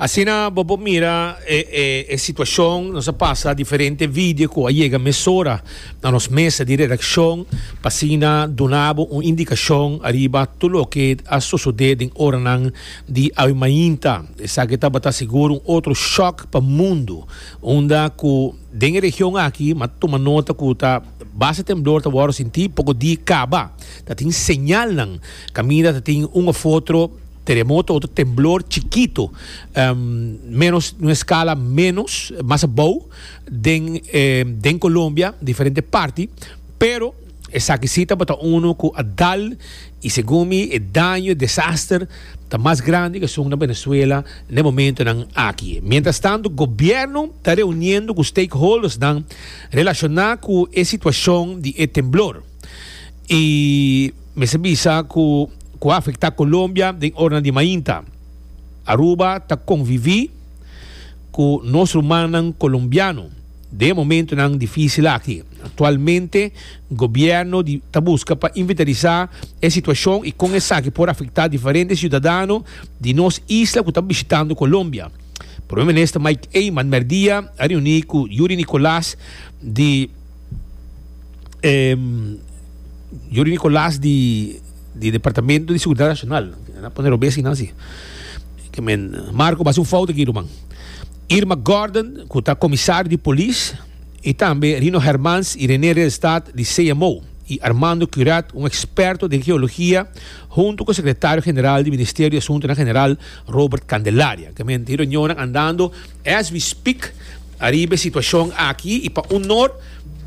Asina bo por mira e, e, e situacion, nos a pasa diferente video cu a yega mesora na nos mesa di redaccion pa asina duna bo un indicacion ariba tur loke a sosode den oranan di awe mainta. Esaki tabata sigur un otro shock pa mundu, unda cu den e region aki m'a tuma nota cu ta base temblor ta worde sinti poko di caba. Tatin señalnan caminda tatin un of otro Teremoto otro temblor chikito, menos un escala menos mas abou den den Colombia diferente parti pero esaki si tabata uno cu a dal y segun mi e daño e desaster ta mas grandi cu esun na Venezuela n'e momentonan aki. Mientras tanto gobierno ta reuniendo cu stakeholdersnan relaciona cu e situacion di e temblor. y mester bisa cu cu a afecta Colombia den oranan di mainta. Aruba ta convivi cu nos rumannan Colombiano den e momentonan dificil aki. Actualmente Gobierno di ta busca pa inventarisá e situacion y con esaki por afecta diferente ciudadano di nos isla cu ta bishitando Colombia. Primer Minister Mike Eman merdia a reuni cu Yuri Nicolas di em, Yuri Nicolás di, di Departamento di Seguridad Nacional. Na pone Robé sin así. Que men, Marco, basi un fout aquí, man. Irma Gordon, que está comisario de polis, y también Rino Hermans y René Reelstad di CMO, y Armando Curat, un experto den geologia, hunto cu Secretario General di Ministerio di Asuntonan General, Robert Candelaria. Que men tin reunionnan andando. As we speak, ariba e situashon aki i pa un nor,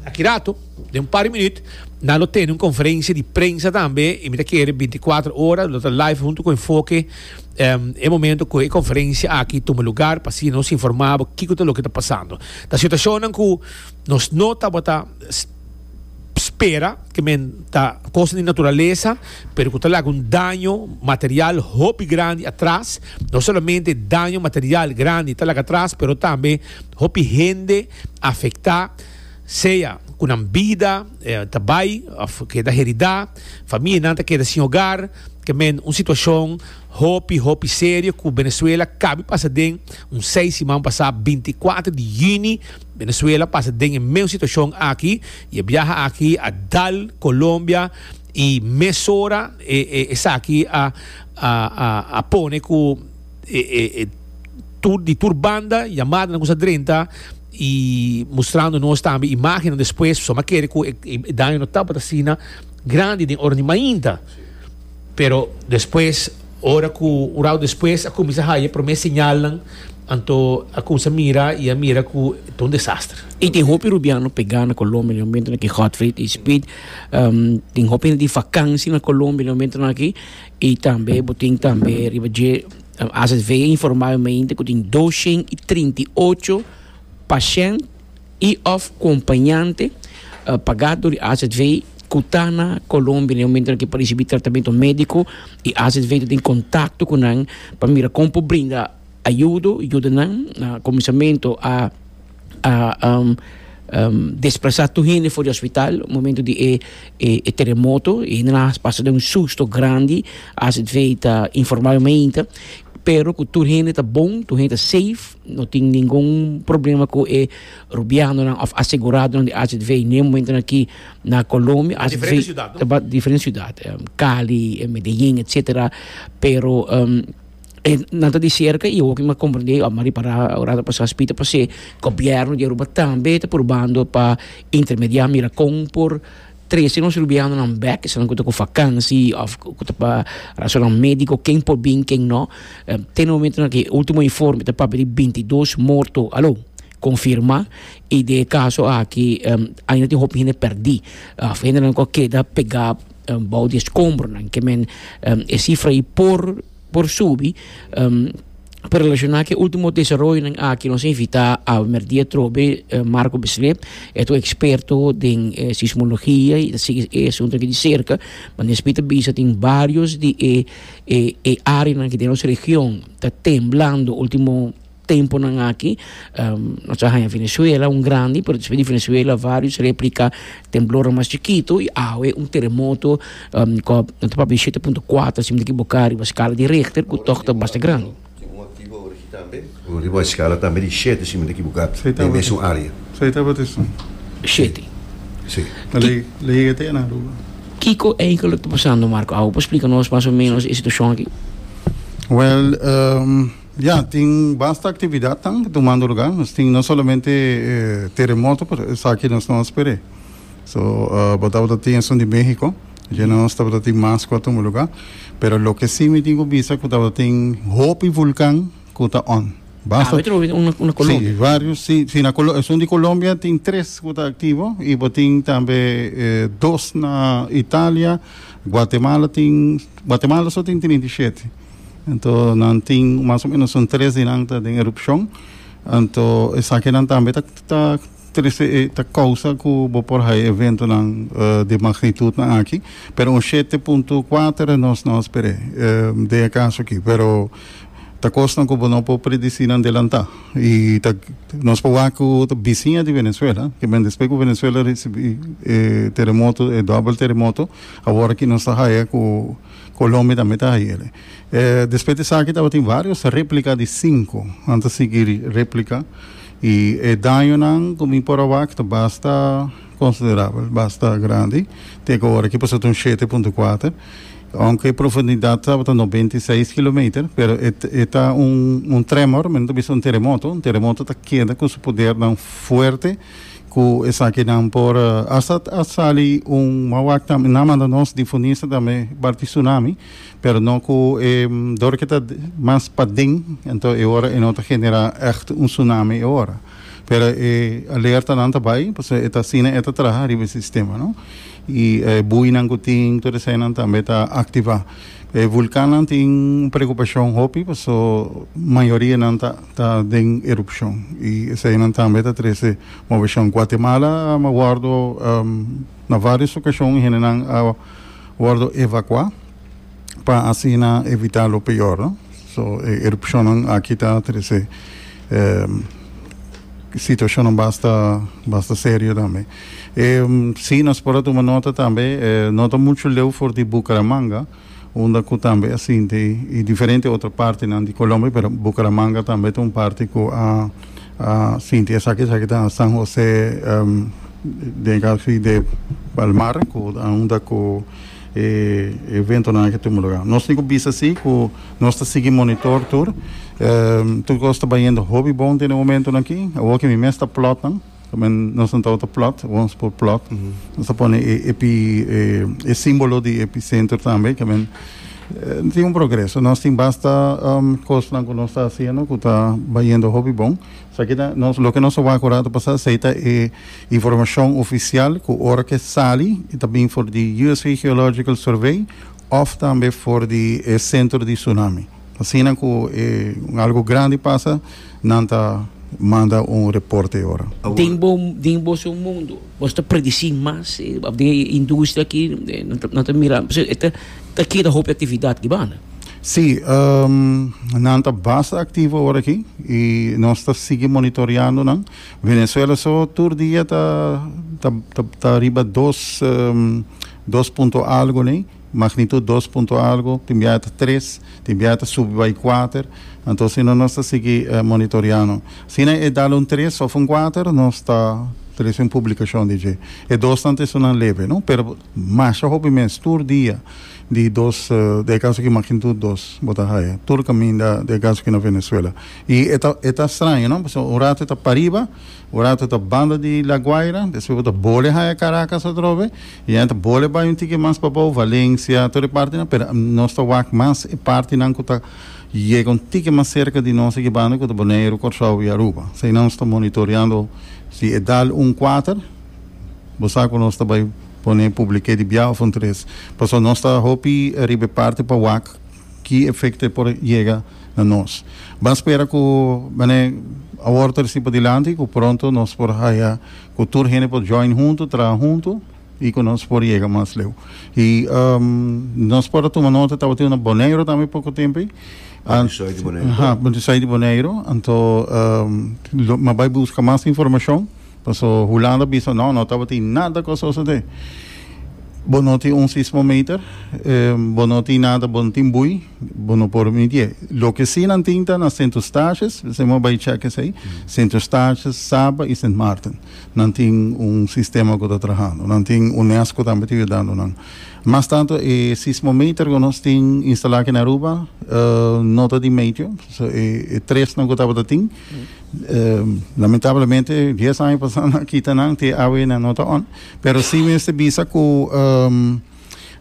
aki rato, den un par di minüt, nan lo tene un konferensia di prensa tambe i mi ta kere bintikuater ora lo ta live huntu ku Enfoke e momentu ku e konferensia aki tuma lugar pa asina nos informabo kiko ta loke ta pasando. Ta situashonnan ku nos no tabata. spera ke men ta kos di naturalesa pero ku ta laga un daño material hopi grandi atras no solamente daño material grandi ta laga atras pero tambe hopi hende afektá sea ku nan bida ta bai òf keda heridá famianan ta keda sin hogar ke men un situashon hopi hopi serio ku Venezuela kabi pasa den un seis siman pasá binti kuater di yüni Venezuela pasa den e mes situacion aki y e biaha aki a dal Colombia y mesora esaki a pone cu di tur banda yamadanan cu sa drenta y mustrando nos tambe imagennan despues, so me kere cu e daño no tabata asina grandi den ora di mainta. Pero despues, ora ku un rau despues a kuminsá haña promé señalnan, anto a kuminsá mira i a mira ku ta un desaster. I tin hopi rubiano pegá na Colombia den momentonan aki, Godfried i Speed. Tin hopi hende di vakansi na Colombia den momentonan aki. I tambe bo tin tambe riba dje, AZV a informá e mainta ku tin dos shen i trinta i ocho pashènt. i òf kompañante pagá dor di azv ku ta na Colombia na e momento nan ke por risibi tratamentu médiko i azv ta tin kontakto ku nan pa mira kon por brinda ayudo yuda nan na kuminsamentu a desplasa tur hende for di hospital momento di e teremoto i hende nan a pasa den un susto grandi azv ta informa yo mainta pero ku tur hende ta bon tur hende ta safe. No tin ningun problema ku e rubianonan òf aseguradonan di HZV ne momentonan aki na Colombia. Na diferente siudat, no? Na diferente siudat. Cali, Medellín, etsetera. Pero nan ta di serka i awor ku mi a komprendé, a ripará ora ta pasá spita pas'e gobièrnu di Aruba tambe ta purbando pa intermediá mira kon por Trese nos rubianonan bek, esnan ku ta ku vakansi òf ku ta pa rasonan médiko, ken por bin, ken nò. Te no momentu aki, último informe ta papia di bintidos morto, aló, konfirmá. I den e kaso aki ainda tin hopi hende pèrdí òf hendenan ku a keda pegá bou di e skombronan. Ke men, e sifra ei por. por subi. Pa relaciona cu e ultimo desaroyonan aki nos a invita awe merdia trobe Marco Beslé, e ta un experto den sismologia y ta sigui e asunto aki di cerca. Nesbi ta bisa tin varios di e areanan aki den nos region ta temblando ultimo. Temponan aki nos a haña Venezuela un grandi, pero despues di Venezuela varios replica temblornan mas chikitu y awe un teremoto cu a papia di shete punto kuater si no ta ekiboka riba skala di Richter cu tog ta basta grandi. Riba e skala tambe di shete si no ta ekiboka den mesun area. Kiko eigenlik ta pasando Marco awe? Por splica nos mas o menos e situacion aki? Ya, tin basta actividadnan ta tumando lugar. Nos tin no solamente e teremoto, pero esaki nos no a sper'é. So, bo tabata tin esun di Mexico, dje nos tabata tin mas cu a tuma lugar. Pero loke si mi tin cu bisa cu tabata tin hopi vulcan cu ta on. Ah, Basta, bo e troba un na, un na si, Colombia. varios, si, si na Colo, esun di Colombia tin tres cu ta activo y bo tin tambe e dos na Italia, Guatemala tin, Guatemala so tin trinta i shete. Anto nan tin mas o menos un tres di nan ta den erupcion. Anto esakinan tambe ta, ta, trece, eh, ta causa cu bo por hay eventonan eh, di magnitudnan aki. Pero un siete punto cuater nos no a sper'é eh, den e caso aki. Pero ta cosnan cu bo no por predici nan delantá. Y ta, nos por wak cu ta bisiña di Venezuela, que men despues cu Venezuela ricibi e terremoto, e doubel terremoto, awor aki nos ta haya cu, Colombia tambe ta haiele. E despues di esaki tabatin varios replica di cinco. Nan ta sigui replica y e dañonan cu mi por a wak ta basta considerabel, basta grandi. Te cu ora aki por ser un shete punto kuater. Aunke e profundidad tabata noventa i seis kilometer pero e e ta un un tremor, mi no ta bisa un teremoto. Un teremoto ta keda cu su podernan fuerte. Ku esakinan por asta a sali un wawak tambe. Nan manda nos di Funisa tambe bar di Sunami, pero no ku e dor ke ta mas paden, anto e ora e no ta genera ècht un Sunami e ora. Pero e alertanan ta bai, pasobra e ta asina e ta traha riba e sistema, no? I e buinan ku tin, tur eseinan tambe ta aktivá. E vulkannan tin un preokupashon hopi paso mayorianan ta ta den erupshon i eseinan tambe ta trese mobeshon. Guatemala a wòrdu na vários okashon hendenan a wòrdu evakuá pa asina evitá lo peor. So e erupshonnan aki ta trese situashonnan basta basta serio tambe. Sí, nos por a tuma nota tambe, eh, no ta mucho leu for di Bucaramanga, unda cu tambe a sinti, y diferente otro partenan di Colombia, pero Bucaramanga tambe ta un parte cu a, a sinti esaki, esaki ta San José, em, den casi de Palmar, cu a unda cu e eventonan aki tuma lugar. Nos tin cu bisa sí, cu nos ta sigui monitor tur, em, tur cos ta bayendo hopi bon den e momentonan aki, awor cu mi mes ta plotnan, También nos a tawata plot, wons por plot. Nos a pone e epi, e, e símbolo di epicentro también, que men eh, tin un progreso. Nos tin basta um, cosnan cu nos ta haciendo cu ta bayendo hopi bon. Sa kita nos, lo que nos a waak ora ta pasá, esei ta e informacion oficial cu ora ke sali e ta bin for di USV Geological Survey of tambe for di e centro di tsunami. Asina cu e un algo grandi pasa, nan ta manda un reporte e ora. Den bo, den boso mundo, boso ta predici mas? E, ap den e industria aki, e, nan ta, nan ta mira, pasobra e ta, ta keda hopi actividad di banda. Sí, ehm, nan ta basta activo ora aki y nos ta sigui monitoreando nan. Venezuela so tur dia ta, ta, ta, ta riba dos, ehm, dos punto algo ley. magnitud dos punto algo, tin biaha ta tres, tin biaha ta subi bai kuater, anto asina nos ta sigui monitoreando. Asina e dal un tres of un kuater nos ta trece un publicacion di dje. E dosnan ta esunnan lebe, no, pero masha hopi mes, tur dia di dos di e caso aki magnitud dos bo ta haya, tur caminda di e caso aki na Venezuela. Y e ta e ta straño, no, pasobra un rato e ta pariba, Un ratu ta banda di La Guaira, despues bo ta bole haya Caracas atrobe, y nan ta bole bay un tiki mas pa bou, Valencia, tur e partinan, pero nos ta wak mas e partinan cu ta yega un tiki mas cerca di nos aki banda, cu ta Boneiru, Corsow y Aruba. Asina nos ta monitoreando si e dal un kuater, bo sa cu nos ta bay pone publike di bia of un tres. Pasobra nos ta hopi riba e parti pa wak. ki efekto e por yega na nos. Ban spera ku mane awor ta risi pa dilanti ku pronto nos por haya ku tur hende por join huntu, traha huntu i ku nos por yega mas leu. I nos por a tuma nota tabatin na Boneiru tambe poko tempu, Buntisai di Boneiru. Aha, Buntisai di Boneiru, anto lo mi a bai buska mas informashon. Paso Hulanda bisa no no tabatin nada cu a sosode. Bo no tin un sismometer, bo no tin nada, bo no tin bui, bo no por midi'e. Loke si nan tin ta na Sint Eustatius, esei mos bai check esei, Sint Eustatius, Saba y Sint Maarten. Nan tin un sistema cu ta trahando. Nan tin UNESCO tambe ta yudando nan. Mas tanto e sismometer cu nos tin instala aki na Aruba no ta di metio, so e tresnan cu tabata tin. Lamentablemente dies aña pasa nan a kita nan te awe nan no ta on. Pero si mester bisa cu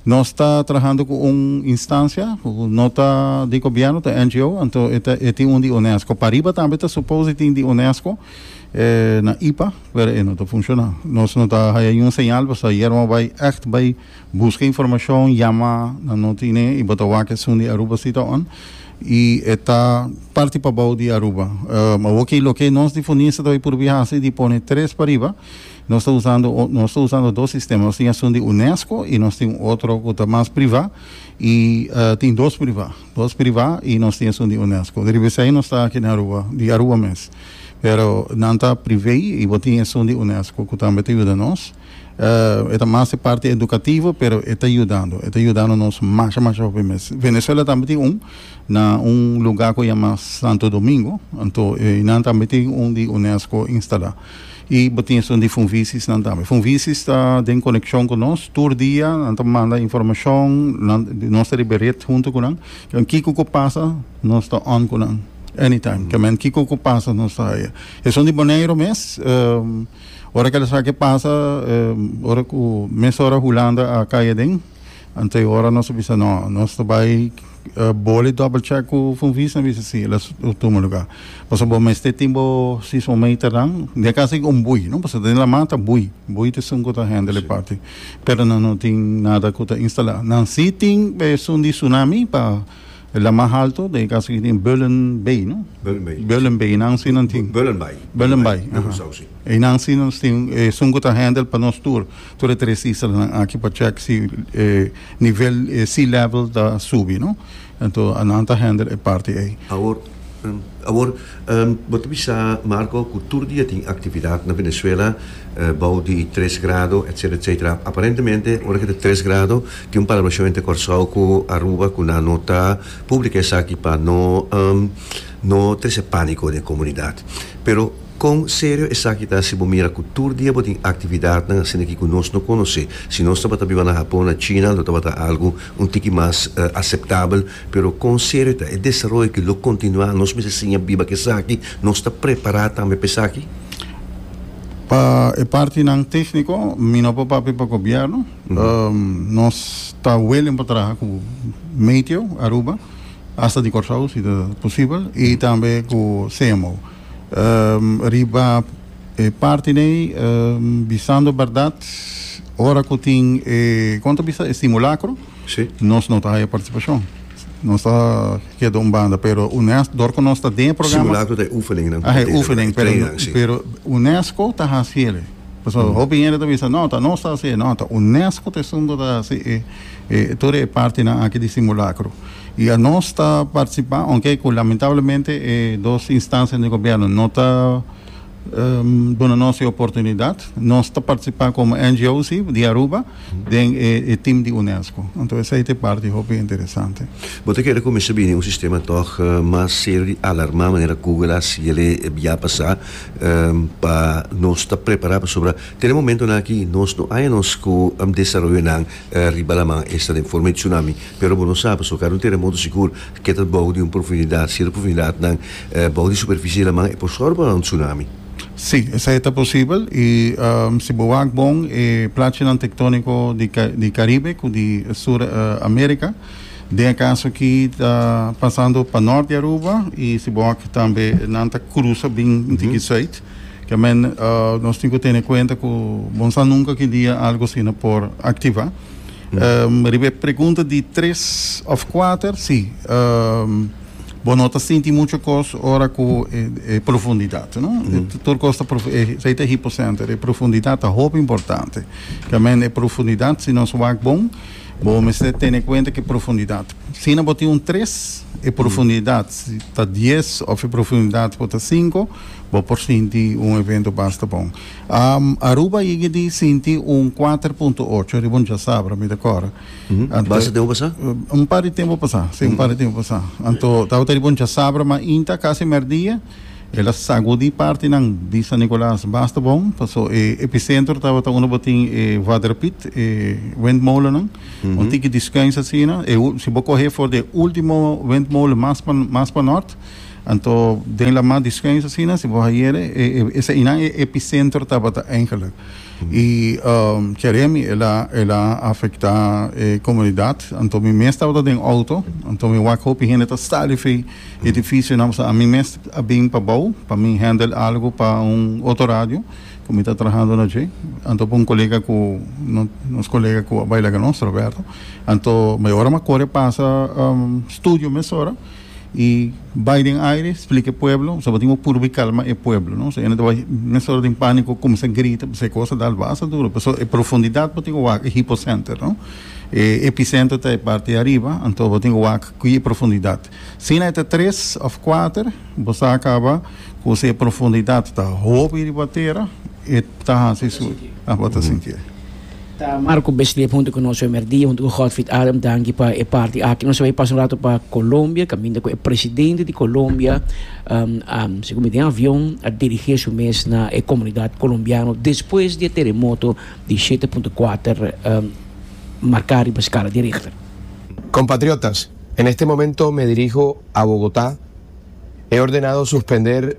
nos ta trabajando cu un instancia cu no ta di gobierno, ta NGO, anto e, ta, e tin un di UNESCO. Pariba tambe ta supose tin di UNESCO eh, na IPA, pero e no ta funciona. Nos no ta haya niun señal, pues ayer mo bay echt bay busca informacion, yama, nan no tine, y bo ta wak esun di Aruba si ta on. Y e ta parti pa bao di Aruba. Ehm, oki, loke nos di Funisa ta bai purbi haci di pone tres pariba, nos ta usando, nos ta usando dos sistema. Nos tin esun di UNESCO y nos tin un otro cu ta mas priva y tin dos priva, dos priva y nos tin esun di UNESCO. Riba esai nos ta aki na Aruba, di Aruba mes. Pero nan ta privé y bo tin esun di UNESCO cu tambe ta yuda nos. Eh, e ta mas e parti edukativo, pero e ta yudando, e ta yudando nos masha, masha hopi mes. Venezuela tambe tin un, na un lugá ku yama Santo Domingo, anto einan tambe tin un di UNESCO instalá. I bo tin esun di Funvisisnan tambe. Funvisis ta den konekshon ku nos tur dia, nan ta manda informashon, nan, nos ta riba e ret huntu ku nan. Kemen kiko ku pasa, nos ta on ku nan, anytime. Kemen kiko ku pasa, nos ta haya. Esun di Boneiru mes, eh. Ora ku esaki pasa, ora ku mes ora Hulanda a kai aden, anto ora nos a bisa no, nos ta bai boli double check ku Von Vies a bisa si el a tuma luga. Pasobra bo mester tin bo seismometernan, den e kas ei un bui, no, pasobra den laman ta bui, bui ta esun ku ta hendel e parti, pero nan no tin nada ku ta instala. Nan si tin besun di tsunami pa El la mas alto de casa que tiene Bullen Bay, ¿no? Bullen Bay. Bullen Bay, nan si nan tin. Bullen Bay. Bullen Bay. E nan si nan tin, e sun kuta handel pa nos tour. Tour e tres isla nan aki pa check si e nivel e sea level ta subi, ¿no? Ento anan ta handel e parti ei. Awor Awor, bo ta bisa Marco cu tur dia tin actividad na Venezuela bao di tres grado etcetera etcetera. Aparentemente ora cu ta tres grado tin un palabracion entre Corsou cu Aruba cu nan no ta publica esaki pa no no trece panico den e comunidad. Pero con serio esaki ta si bo mira cu tur dia bo tin actividadnan asina aki cu nos no conoce? Si nos tabata biba na Japon, na China lo tabata algo un tiki mas aceptabel. Pero con serio ta e desaroyo ki lo continua? Nos mester siña biba cu esaki? Nos ta prepara tambe pa esaki? Pa e partinan tecnico mi no por papia pa gobierno. Nos ta willing pa traha cu Meteo Aruba hasta di Corsow si ta posibel y tambe cu CMO. Riba e parti n'ey bisando berdad ora cu tin e con ta bisa e simulacro. Sí. Nos no ta haya participacion. Nos ta keda un banda, pero UNESCO, dor cu nos ta den e programa. Simulacro ta e oefeningnnan. Ahe, e oefening, pero, Treinnan, sí. pero UNESCO ta haci ere. Pasobra Mm. hopi hende ta bisa, no, ta nos ta haci e. No, ta UNESCO ta esun cu ta haci e, e, tur e partinan aki di simulacro. Y a nos ta participa, aunke cu lamentablemente e dos instancianan di gobierno no ta, ehm, duna nos e oportunidad. Nos ta participa como NGO, sí, di Aruba. den e tim di Unesco. Anto esei ta e parti hopi interesante. Bo ta kere ku mester bini un sistema tòg mas serio di alarmá manera Google a hasi el'e bia pasá pa nos ta prepará pasobra ten e momentunan aki nos no haña nos ku desaroyonan riba laman esta den forma di tsunami pero bo no sa pasobra kada un teremoto sigur ke ta bou di un profundidat si e profundidatnan bou di superfisie di laman e por sòru pa un tsunami. Sí, esei ta posibel i si bo wak bon e plachinan tektóniko di Karibe ku di Sur Amérika, den e kaso akí ta pasando pa nòrt di Aruba i si bo wak tambe nan ta krusa bin ntiki sùit, ke men nos tin ku tene kuenta ku bon sa nunka ki dia algu asina por aktivá. Riba e pregunta di tres òf kuater, sí. bo no ta sinti mucho cos ora cu e, e profundidad no mm -hmm. tur cos ta prof, e, sei ta hipocenter e profundidad ta hoop importante kamen e profundidad si nos wak bon bo mester tene cuenta que profundidad si na bo tin un tres e profundidad mm -hmm. si ta dies of e profundidad bo ta cinco bo por sinti un evento basta bon um, Aruba yigi di sinti un 4.8 riba un jasabra mi ta cora Basa tempu pasá? Un par di tempu pasá, sí, un par di tempu pasá. Anto tabata riba un chasabra, ma inta kasi merdia el a sagudí partinan di San Nicolas basta bon, paso e epicentro tabata unda bo tin e waterpit, e windmolennan, un tiki descanso asina. E ul, si bo coh'é for di e último windmolen mas pa, mas pa nort, anto den la mar descanso asina, si bo hayere, e, e, eseinan e epicentro tabata, eigenlijk. I Jeremy el a afecta e comunidad anto mi mes tabata den auto anto mi wak hopi hende ta sta riba e edificio nan pasobra ami mes a bin pa bou pa mi handle algo pa un otro radio cu mi ta trahando na dje anto pa un colega cu nos colega cu a bay laga nos Roberto anto mi ora mi a core pasa studio mesora I bai den aire splika e pueblo so bo tin bo purba kalma e pueblo no so e na ta bai mes ora den panico cuminsa grita p'esei cosa ta albaster duro paso e profundidad bo tin bo wak e hipocenter no e epicenter ta e parti ariba anto bo tin bo wak kui e profundidad sina e ta tres of kuater bo sa caba cu si e profundidad ta hopi riba tera e ta hasi su bo ta sinti e. Ta Marco Beslev huntu ku nos homer dia, huntu ku Godfried Adam danki pa e parti aki. Nos a bai pasa un ratu pa Colombia, kaminda ku e presidente di Colombia a sigur mi den avion a dirigé su mes na e komunidat kolombiano despues di e teremoto di shete punto kuater marká riba skala di Richter. Compatriotas, en este momento me dirijo a Bogotá, he ordenado suspender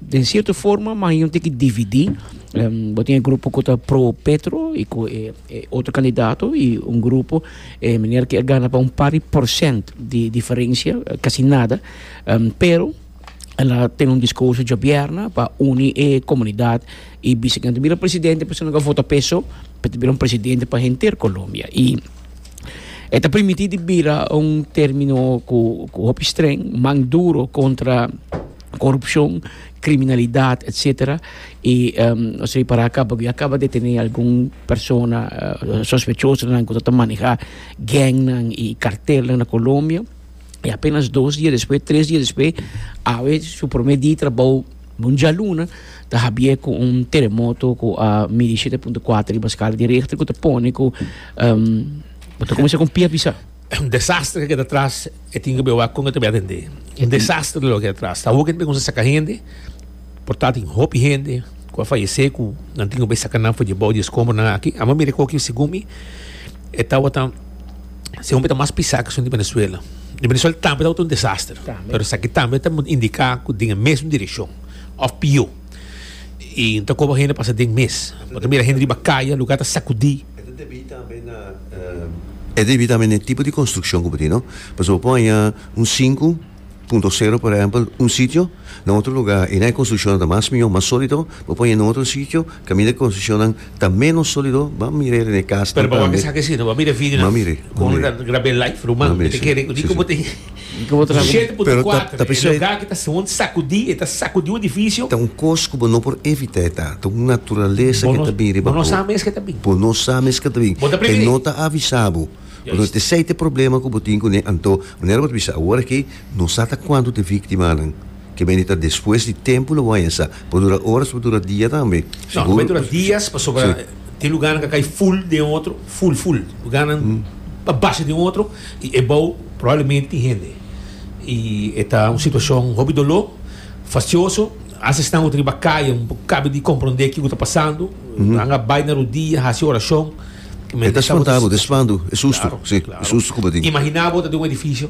Den sierto forma mas yon tin ki dividí. Bo tin e grupo ku ta pro Petro i ku e otro kandidato i un grupo e miner ku a gana pa un par di porsent di diferensia, kasi nada. Pero a la tene un diskurso djobièrna pa uni e komunidat i bisa ku nan ta bira presidente pues nan ku a vota p'e so pa e ta bira un presidente pa henter Colombia. I e ta permití di bira un término ku hopi streng, man duro kontra. corupcion, criminalidad etc. Y nos a repará caba cu ya caba de tene algun persona sospechosonan cu ta maneha gangnan y cartelnan na Colombia. Y apenas dos dia despues, tres dia despues, awe su prome dia di trabou, un dialuna, ta habié cu un teremoto cu a midi shete punto cuater riba scala di Richter cu ta pone cu bo ta cuminsa cu un pia bisa. Un desastre ke keda tras e tin ke bewa kon e ta bia atendé. Un desastre lo keda tras. Ta hopi hende kuminsá saka hende, por ta tin hopi hende ku a fayesé ku nan tin ku bai saka nan for debou di e skombronan aki. Amo mira ku aki segun mi e tawatam si hopi ta mas pisá keson di Venezuela. Di Venezuela tambe tawata un desastre pero esaki tambe ta indiká ku den e mes direkshon òf pió. I no ta koba hende pasa den mes. Bo ta mira hende riba kaya lugá ta sakudí. E ta debí tambe na e debí tambe na e tipo di konstrukshon ku bo tin, no? Pasobra bo por haña un sinku punto sero, por ehèmpel, un sitio, na otro lugá i na e konstrukshonnan ta mas mihó, mas sólido, bo pone na otro sitio, kaminda e konstrukshonnan ta ménos sólido, ban mir'é den e kas tambe. Pero bo a mira esaki asina, bo a mira e video nan, kon grab'é live, ruman, mi ta kere di kon bo tin. Pero ta bisa e ta un kos ku bo no por evitá e ta un naturalesa ku ta bin riba bo bo no sa mes ke ta bin e no ta avisa bo entonces esei ta e problema ku bo tin kuné anto manera ku bo ta bisa awor aki no sa ta kuantu ta e víktimanan. Ke mene ta despues di tempu lo bo a hesa. Por dura oras por dura dia tambe. No, lo mei dura dias pasobra tin lugarnan ka kai ful den e otro, ful ful. Lugarnan pa basha den e otro i e bou probablemente tin hende. I e ta un situashon hopi doló, fastioso. Hasta esnan ku ta riba kaya no por kabe di komprondé kiko ta pasando. Nan a bai na rodia, hasi orashon. E ta spantá bo, ta spantu, e sustu. Si, e sustu ku bo tin. Imaginá bo ta den un edifisio.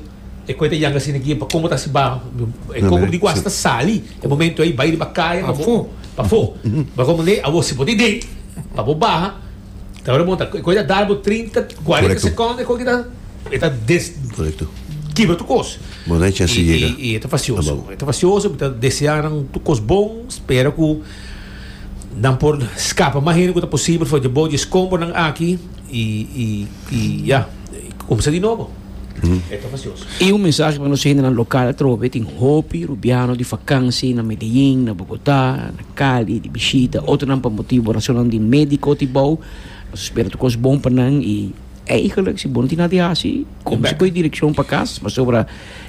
E koe ta yanga asina aki, pa komo ta hasi baho, e kobo di guas ta sali, e momento ei bai riba kaya pa bo, pafó, bagon mane awor si bo ta den, pa bo baha, ta hora bon ta, e koe ta dar bo trinta, kuarenta sekònt, e koe aki ta, e ta des, kibra tur kos, i e ta fasioso, e ta fasioso, mi ta deseá nan tur kos bon, spera ku nan por skapa mas hende ku ta posibel for dje bo dje skombornan aki, i, i, i ya, i kumsa di nobo. I un mensahe pa nos hendenan lokal atrobe, tin hopi rubiano di fakansi na Medellín, na Bogotá, na Cali di bishita, otronan pa motibu rasonan di médiko tibou. Nos spera tur kos bon pa nan i eigenlik si bo no tin nada di hasi kominsa kohe direkshon pa kas pasobra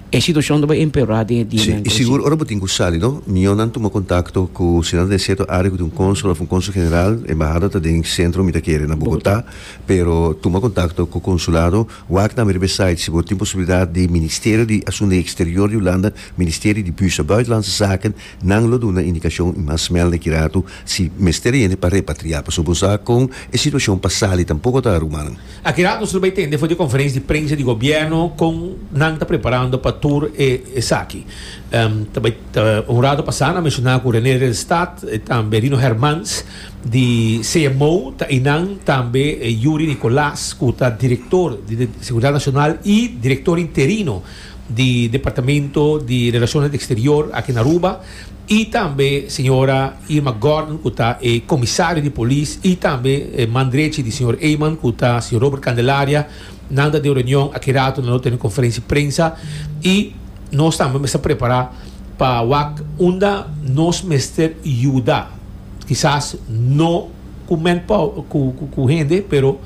e situashon ta bai empeorá den e dianan ku ta si. Sigur ora bo tin ku sali no mió nan tuma kontakto ku si nan ta den sierto área ku tin un kónsul òf un kónsul general, embahada ta den sentro mi ta kere na Bogotá, pero tuma kontakto ku konsulado Wak na Meribes Site si bo tin posibilidat di Ministerio di Asuntu di Eksterior di Hulanda, Ministerio di Buurschap Buitenlandse Zaken, nan lo duna indikashon i mas mèl na Kirato si mester a yende pa repatriá pasobra bo sa kon e situashon pa sali tampoko ta ruman. A Kirato solo bai tende for di e konferensia di prensa di gobièrnu kon nan ta preparando pa tur esaki. Ta bai ta un ratu pasá nan menshoná ku René Redelstad, tambe Rino Hermans, Di CMO ta einan tambe Yuri Nicolas cu ta director di Seguridad Nacional y director interino di Departamento di Relaciones Exterior aki na Aruba y tambe señora Irma Gordon cu ta e Comisario di Polis y tambe man drechi di señor Eman cu ta señor Robert Candelaria. Nan ta den reunion aki rato nan lo tene conferencia di prensa y nos tambe mester prepara pa wak unda nos mester yuda. Kisas no ku men pau, ku, ku, ku hende, pero,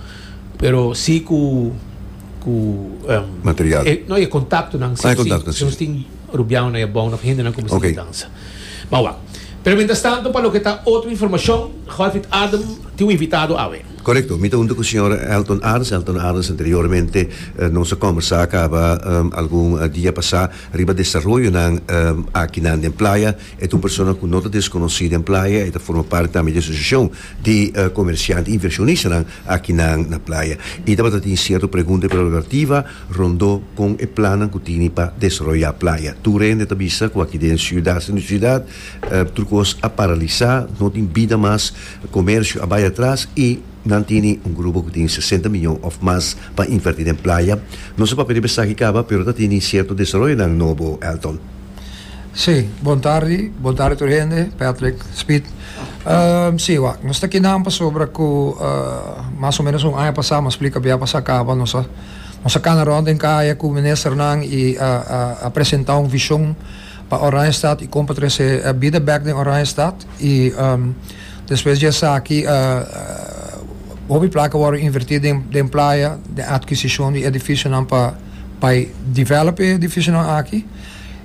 pero si ku, ku, em, Material. e, no, e kontaktonan, si Ah, e nos tin, kontaktonan, si nos si. tin rubianan na e bou, nan hende nan kuminsá Oké. di dansa. Bou wak. Pero mientras tanto, pa loke ta otro informashon, Golfit Adem tin un invitado awe. Korekto, mi ta hunta ku señor Elton Arns. Elton Arns anteriormente nos a kòmbersá kaba algun dia pasá riba desaroyonan akinan den playa. E tur persona ku no ta deskonosí den playa e ta forma parti tambe di e asosiashon di komersiant i invershonistanan akinan na playa. I tabata tin sierto pregunta i prerogativa rondó kon e plannan ku tini pa desaroyá playa. Tur hende ta bisa ku aki den siudat sinda siudat tur kos a paralisá, no tin bida mas, komersio a bai atras i nan tini un grupo ku tin sesenta miyon òf mas pa invertí den playa. No sa papia riba esaki kaba pero ta tini sierto desaroyonan nobo, Elton. Sí, bon tardi, bon tardi tur hende, Patrick, Speed. Um, sí, wak, nos ta aquí nan pasobra cu uh, mas o menos un aña pasá, mas splica bia pasá caba, nos a, nos a cana rond den caya cu ministernan y a, a, a presentá un vision pa Oranjestad y con pa trece uh, bida bek den Oranjestad y um, despues dje esaki uh, uh, hopi placa worde invertí den, den playa, den adquisicion di edificionan pa bai develop e edificionan aki.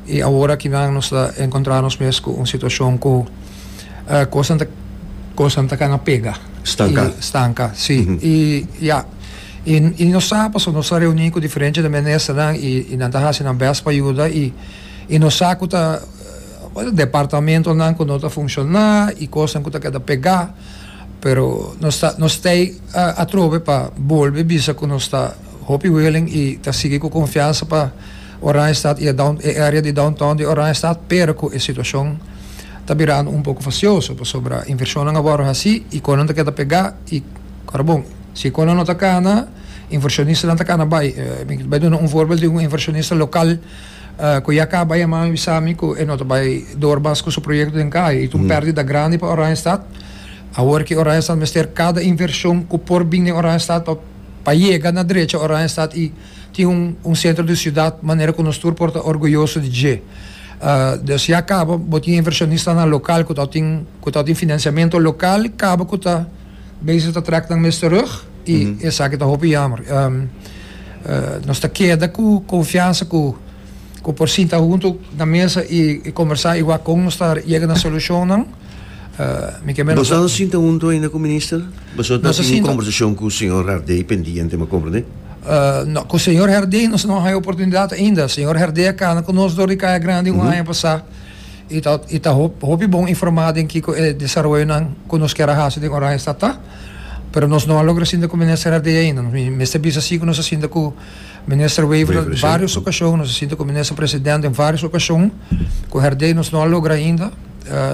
I awor aki nan nos ta encontra nos mes cu un situacion cu cosnan ta cosnan ta cana pega. Stanca. I stanca, si. I ya, i, i nos sa, pasobra nos a reuni cu diferente de ministernan i, i nan ta haci nan best pa yuda i, i nos sa cu ta departamentonan cu no ta funciona i cosnan cu ta keda pega, pero nos ta, nos stay atrobe pa bolbe bisa cu nos ta hopi willing i ta sigui cu confiansa pa. Oranjestad y e area di downtown di Oranjestad pero cu e situacion ta birando un poco facioso pasobra inversionnan a wordo haci y con nan ta keda pega y ora bon si con nan no ta cana inversionistanan ta cana bay mi ta bay duna un voorbeeld di un inversionista local cu ya caba yaman mi bisa mi cu e no ta bay door mas cu su proyecto den cay y ta un perdida grandi pa Oranjestad awor que Oranjestad mester cada inversion cu por bini den Oranjestad pa yega na drecha Oranjestad y Tin un un sentro di siudat manera ku nos tur por ta orguyoso di dje. Des ya kaba bo tin invershonistanan lokal ku ta tin ku ta tin finansiamentu lokal kaba ku ta bezig ta trek nan mes terug i esaki ta hopi yammer. Nos ta keda ku konfiansa ku. ku por sinta huntu na mesa i kombersá i wak kon nos ta yega na solushonnan. Mi ke menos. Boso a sinta huntu ainda ku minister? Boso ta tene un kombersashon ku señor Herdey pendiente, mi a komprende? No, ku señor Herdey nos no a haña oportunidat ainda. Señor Herdey a kana ku nos dor di Kaya Grandi un aña pasá i ta i ta hopi bon informá den kiko e desaroyonan ku nos kier a hasi den Oranje Stat ta, pero nos no a logra sinta ku minister Herdey ainda. Mi mester bisa si ku nos a sinta ku. Minister Wevergh, den varios ocasion nos a sinta cu Minister President den varios ocasion cu herdey nos no a logra ainda.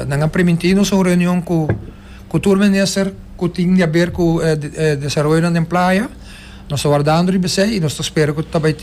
Nan a primintí nos un reunion cu cu tur minister cu tin di haber cu e desaroyonan den playa. Nos ta wardando riba esey y nos ta spera cu ta bai tin.